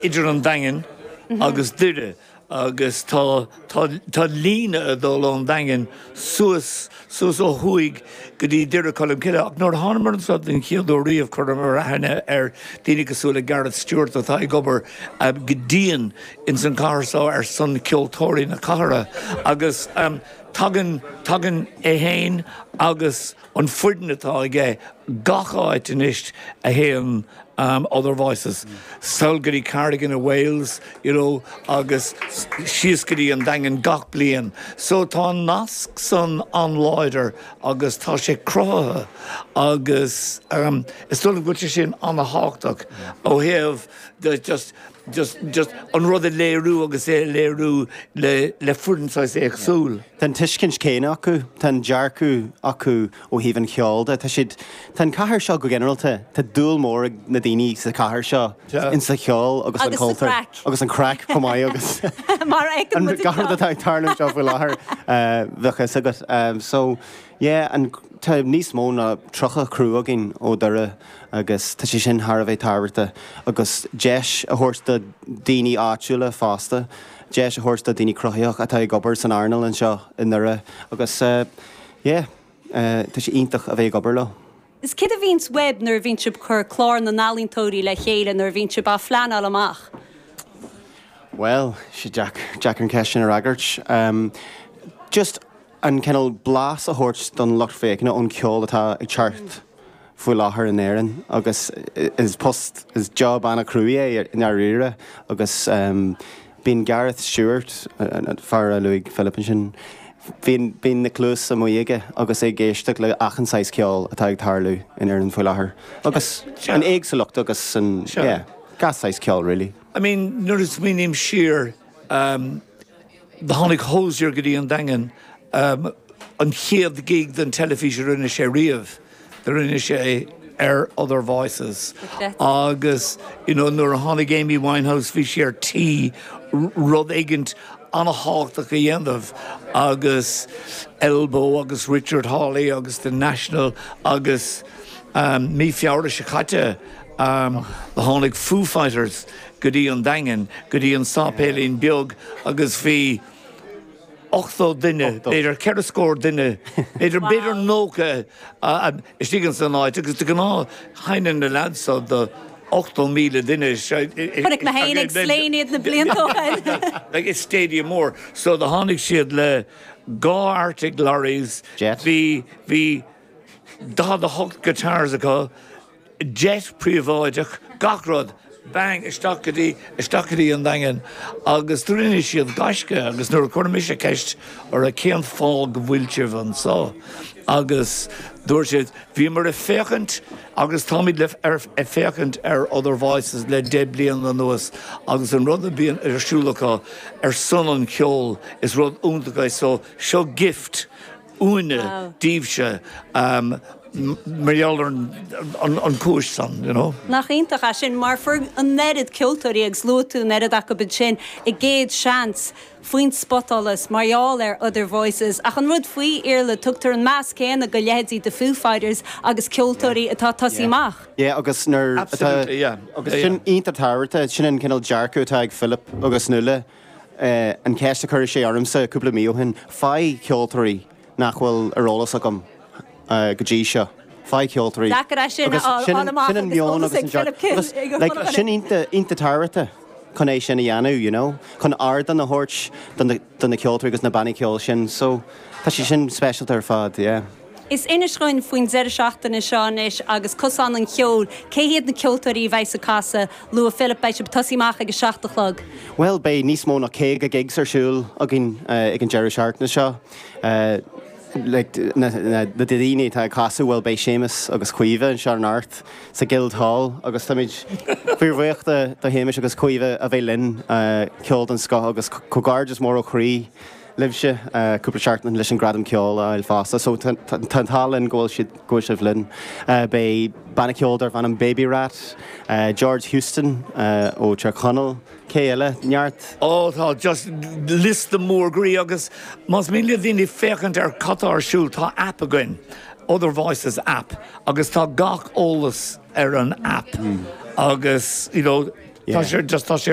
idir an Daingean agus Doire agus tá tá líne ag dul ón Daingean suas suas ó thuaidh go dtí Doire Colmcille ach nuair a thánamar anseo den chéad uair riamh chuireamar aithne ar dhaoine cosúil le Garrett Stewart atá ag obair go dian ins an cathair so ar son ceoltóirí na cathrach agus tagann tagann é fhéin agus an foireann atá aige gach áit anois a théann um, Other Voices, sall go dtí Cardigan in Wales, you know, agus síos go dtí an Daingean gach bliain. So tá an nasc san an-láidir agus tá sé cruthaithe agus um, is dóigh liom go bhfuil sé sin an-thábhachtach ó thaobh de just just, just an rud a léiriú agus é a léiriú le, le foireann saghas éagsúil. Tá an tuiscint céanna acu, tá an dearcadh acu ó thaobh an cheoil de. Tá siad, tá an chathair seo go ginearalta, tá dúil mhór ag na daoine sa chathair seo ins an cheol agus an cultúr. Agus sa chraic. Agus an craic, chomh maith agus. Mar a fheiceann muid anseo. An gach rud atá ag tarlú anseo faoi láthair, tá a fhios agat. So, yeah, an, tá níos mó ná tríocha crú againn ó Dhoire. agus tá sé sin thar a bheith tábhachtach, agus deis a thabhairt do dhaoine áitiúla fosta, deis a thabhairt do dhaoine cruthaitheacha atá ag obair san earnáil anseo i nDoire agus yeah, tá sé iontach a bheith ag obair leo. Is cad é a bhíonns uaibh nuair a bhíonn sibh ag cur clár na n-ealaíontóirí le chéile, nuair a bhíonn sibh á phleanáil amach? Bhuel, tá sé deacair an ceist sin a fhreagairt. Just. an cineál blas a thabhairt don lucht féachana ón cheol atá atá thart faoi láthair in Éirinn agus is post, is job an-chruaidh é i ndáiríre agus bíonn Garrett Stewart, an fear a luaigh Philip ansin, bíonn na cluasa amuigh aige agus é ag éisteacht le achan saghas ceoil atá ag tarlú in Éirinn faoi láthair agus an éagsúlacht agus an, yeah, gach saghas ceoil really. I mean nuair a smaoiním siar, Tháinig Hozier go dtí an Daingean, an chéad gig don teilifís a rinne sé riamh, do rinne sé ar Other Voices agus you know nuair a tháinig Amy Winehouse bhí sí ar tí rud éigint ana-thábhachtach a dhéanamh agus Elbow agus Richard Hawley agus The National agus mí Feabhra seo caite tháinig Foo Fighters. go dtí an Daingean, go dtí an séipéilín beag agus bhí ochtó duine, b'fhéidir ceithre scór duine, b'fhéidir, b'fhéidir nócha istigh ins an áit agus de ghnáth seinneann na leaids seo do ochtó míle duine, sé, Chonaic mé féin ag Slane iad na blianta ó shin. like a stadium mór, so do tháinig siad le dhá Artic Lorries, Jet. bhí, bhí daichead a hocht guitars acu, jet príobháideach, gach rud, bang, isteach go dtí, isteach go dtí an Daingean agus do rinne siad gaisce agus nuair a chuir mise ceist orthu cén fáth go bhfuil sibh anseo agus dúirt siad bhíomar ag féachaint agus táimid le, ar, ag féachaint ar Other Voices le deich bliana anuas agus an rud a bhíonn ar siúl acu ar son an cheoil is rud iontach é so seo gift uainne daoibhse mar gheall ar an chúis san, you know. Nach iontach é sin, mar fuair an oiread ceoltóirí agus luaigh tú an oiread acu ansin a gcéad seans faoin spotsholas mar gheall ar Other Voices ach an rud faoi Iarla, tugtar an meas céanna do leithéidí The Foo Fighters agus ceoltóirí atá tosaí amach. Yeah agus nuair atá, agus sin iontach tábhachta, sin an cineál dearcadh atá ag Philip agus Nuala, an cheist a chuir sé ormsa cúpla mí ó shin, faigh ceoltóirí nach bhfuil ar eolas agam go dtí seo, faigh ceoltóirí. Deacair é sin a fháil amach agus eolas ag Philip King ag a chumadh é. Sin iontach tábhachta chun é sin a dhéanamh, you know, chun ardán a thabhairt do na ceoltóirí agus na bannaí ceoil sin, so tá sé sin speisialta ar fad, yeah. Is inis dúinn faoin deireadh seachtaine seo anois agus Cosán an Cheoil, cé hiad na ceoltóirí a bheas ag casadh? Luaigh Philip, beidh sibh ag tosaí amach ag a seacht a chlog. Bhuel, beidh níos mó ná caoga gigs ar siúl againn ag an deireadh seachtaine seo. Na daoine atá ag casadh, bhuel, beidh Séamus agus Caoimhe anseo in Ard sa Guild Hall agus táimid fíor bhuíoch do Shéamus agus Caoimhe a bheith linn, ceol den scoth agus comhghairdeas mór ó chroí. libhse cúpla seachtain leis an Gradam Ceoil a fháil fosta so tá an t-ádh linn go bhfuil siad, go bhfuil sibh linn. Beidh banna ceoil darbh ainm Baby Rat, George Houston ó Tír Chonaill, cé eile? neart. Ó tá just liosta mór groí agus más mian le daoine féachaint ar cad tá ar siúl tá app againn, Other Voices app agus tá gach eolas ar an app agus you know tá sé just, tá sé ar.